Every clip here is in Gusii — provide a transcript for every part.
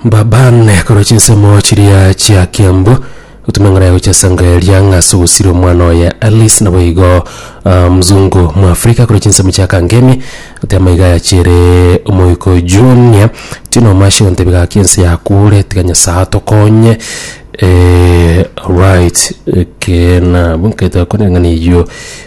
Babane korwa chinsemo chiria chia Kiambu gotuma eng'ora ya gochia Sanga eria ng'a ase ogosira omwana oye Alice naboigo ah, mzungu mwafrika korwa chinsemo chia Kangemi gotema iga yachere omoiko Junior tino omashe gontebia gaki ense yakure tiga Nyasaye atokonye eh, right ekeena abwo nkaito akore ng'ana eywo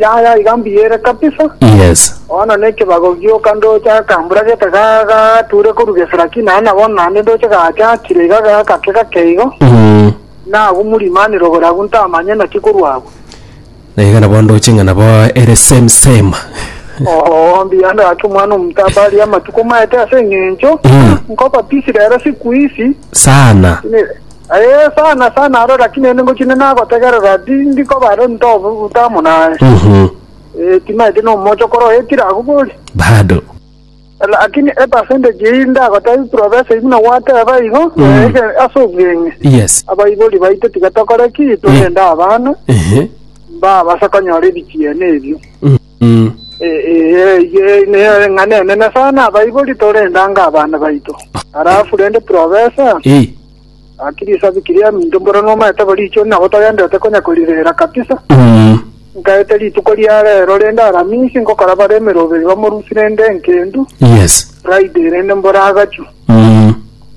Yaya iga mbiyere kabisa. Yes. Bono nekebago gioka ndoche akambura gete ga- gature korwa geseraki naye nabo naende ndoche gacha akire iga ga- gake gake igo Mm. nagumurimanire ogore agwo ntamanye naki korwa agwo Na iga nabo ndoche ng'a nabo ere same same. oo mbuya ndagake omwana omotaba aria amatuko maete ase eng'encho Mm. nkoba pisi rero siku isi Sana. Ne- Ee, sana sana aro, lakini naende ngochia nagotegerera, tindi koba aro ntobuta amo naye. Mhm. Ee, timaeti nomocha okora oetire agwo bori. Bado. Lakini epercentage eyio ndagotebi profesa igu na gwateba igo, Mm. ege ase obweng'e. Yes. Abaibori baito tiga tokore ki, torende abana, Ehe. mbabase konyora ebichiene ebio. Mm. Mm. ng'a nenene sana abaibori torende ango abana baito halafu rende profesa Eh. akirisa bikiria minto mboro nomaete boricho nabo tagendete konya korirera kabisa Mm. nkaete rituko ria rero rende aramisi ngokora bare emeroberi bamorusi rende enkendu Yes. friday rende mbora agachu Mm.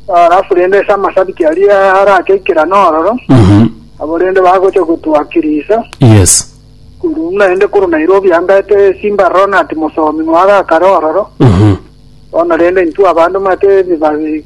halafu rende ase amasabiti aria arake ikerano ororo Mhm. abo rende bagocha gotwakirisa Yes. Korwa naende korwa Nairobi ambete esimba aroro nati mosomi mwagakare ororo. Bono rende intwe abanto mate ebibabi